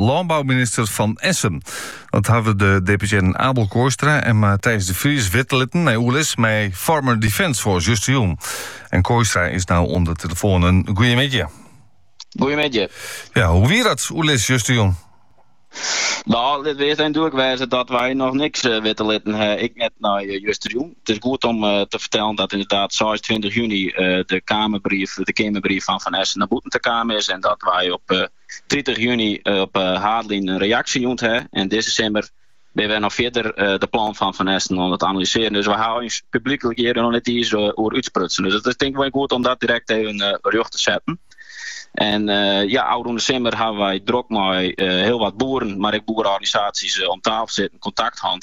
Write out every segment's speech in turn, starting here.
lânbouminister Van Essen. Dat hawwe de deputearren Abel Kooistra en Matthijs de Vries witte litten nei oerlis mei Farmers Defence Force justerjûn. En Kooistra is nou oan de telefoon. In goeiemiddei. Goeiemiddei. Ja, hoe wie dat oerlis justerjûn? Nou, lit ús even dúdlik wêze dat wy noch niks uh, witte litten ha, ek net nei uh, justerjûn. It is goed om eh, te fertellen dat inderdaad 26 juny eh, de, keamerbrief, de Keamerbrief fan Van Essen nei bûten ta kommen is. En dat wy op tritich juny op haadlinen in reaksje jûn hawwe. En dizze simmer binne we noch fierder de plannen fan Van Essen oan it analysearjen. Dus we hawwe ús publyklik hjir noch net iens oer útsprutsen. Dus it is tink ik wol goed om dat direkt even rjocht te setten. En eh, ja, ôfrûne simmer hawwe wy drok mei eh, hiel wat boeren, mar ek boereorganisaasjes eh, om tafel sitten, kontakt hân.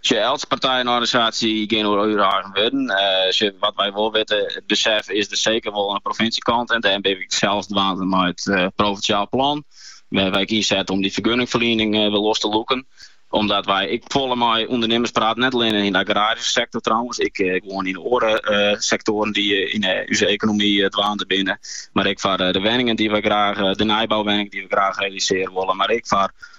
Sjoch, eltse partij en organisaasje gean oer har eigen wurden. Sjoch, wat wy wol witte, it besef is der seker wol oan de provinsjekant en dêrom binne we sels dwaande eh mei it provinsjaal plan. We hawwe ek ynset om dy fergunningferliening wer los te lûken. Omdat wy ek folle mei ûndernimers prate, net allinne yn de agraryske sektor trouwens, ek gewoan yn oare sektoaren dy't yn ús ekonomy dwaande binne, mar ek foar de wenningen dy't wy graach, de nijbouwenningen dy't wy graach realisearje wolle, mar ek foar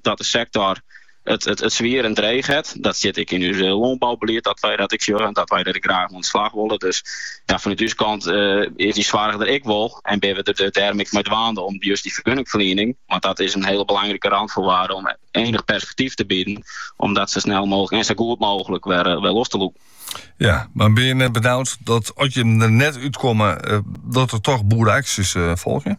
dat de sektor it, it, it swier en dreech het. Dat stiet ek yn ús lânboubelied dat wy dat ek sjogge, dat wy der graach oan de slach wolle. Dus ja, fanút ús kant is dy soarch der ek wol en binne we der dêrom ek mei dwaande om just dy fergunningferliening, want dat is in hiele belangrike rânefoarwearde om ienich perspektyf te bieden, om dat sa snel mooglik en sa goed mooglik wer, wer los te lûken. Ja, mar binne je net benaud dat at je der net útkomme, eh, dat der toch boereaksjes eh, folgje?